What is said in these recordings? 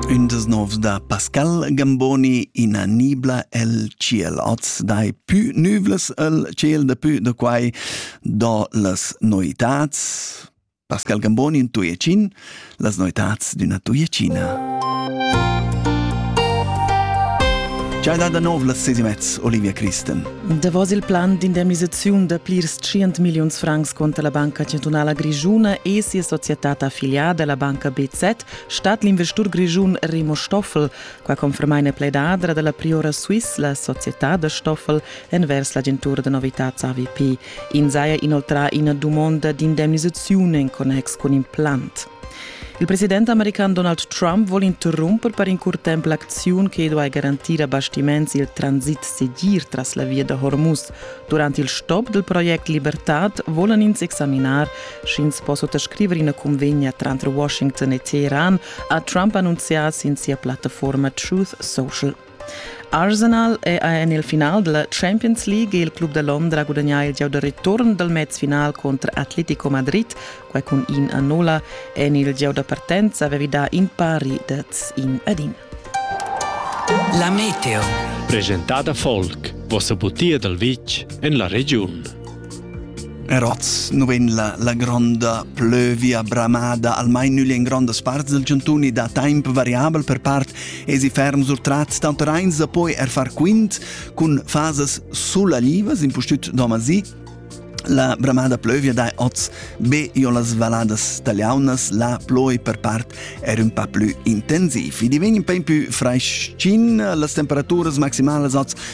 Ün des novs da Pascal Gamboni ina nibla el tschiel oz dai pü nüvlas el tschiel da pü da quai do las noitats Pascal Gamboni in Tuiacin las noitats d'üna Tuiacina Ciao da nov las sesi mezz Olivia Christen Davos il plan d'indemnisaziun da plirs tschient milliuns francs contra la Banca chantunala grischuna e sia societad affiliada, la banca BZ, stat l'investur grischun Remo Stoffel. Qua confermaina pledadra dalla Priora Swiss la societad da Stoffel envers l'agentura da novitads AVP. In saja inoltrà ina dumonda d'indemnisaziun en connex cun implant. Il president american Donald Trump vol interrumper per in curt temp l'acziun che duai garantir a bastiments il transit segir tras la via da Hormuz. Durant il stop del project Libertad volan ins examinar, sch'ins po sottoscriver ina convegna tranter Washington e Teheran, ha Trump annunzià sin sia plattaforma Truth Social. Arsenal è en il final della Champions League il club da Londra gudagnà il gieu da return dal mezfinal contro Atletico Madrid, quai cun in a nulla. En il gieu da partenza avevi dà in pari dads in ad in. La Meteo. Presentada Volk, vossa butia dal vitg en la regiun. Er oz nu vegn la, la gronda plövia bramada almain nügl in grondas parts del chantun e da temp variabel per part esi ferm sur trats tanter eins da poi er far quint cun fasas sullalivas impustüt domasi La bramada plövia dai oz be io las valadas tagliaunas, la ploi per part er un pa plü intensiv. I divegn in peu più fraischin, las temperaturas maximalas oz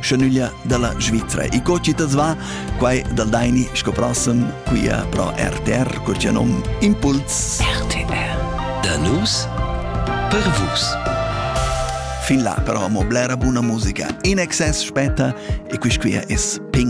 schanuglia dalla Svizra. E co ci tas va? Quai dal Daini sco prossem, quia pro RTR, cur c'è nom Impuls. RTR. Da nus per vus. Fin là però amo blera buna musica in excess spetta e quis quia es ping.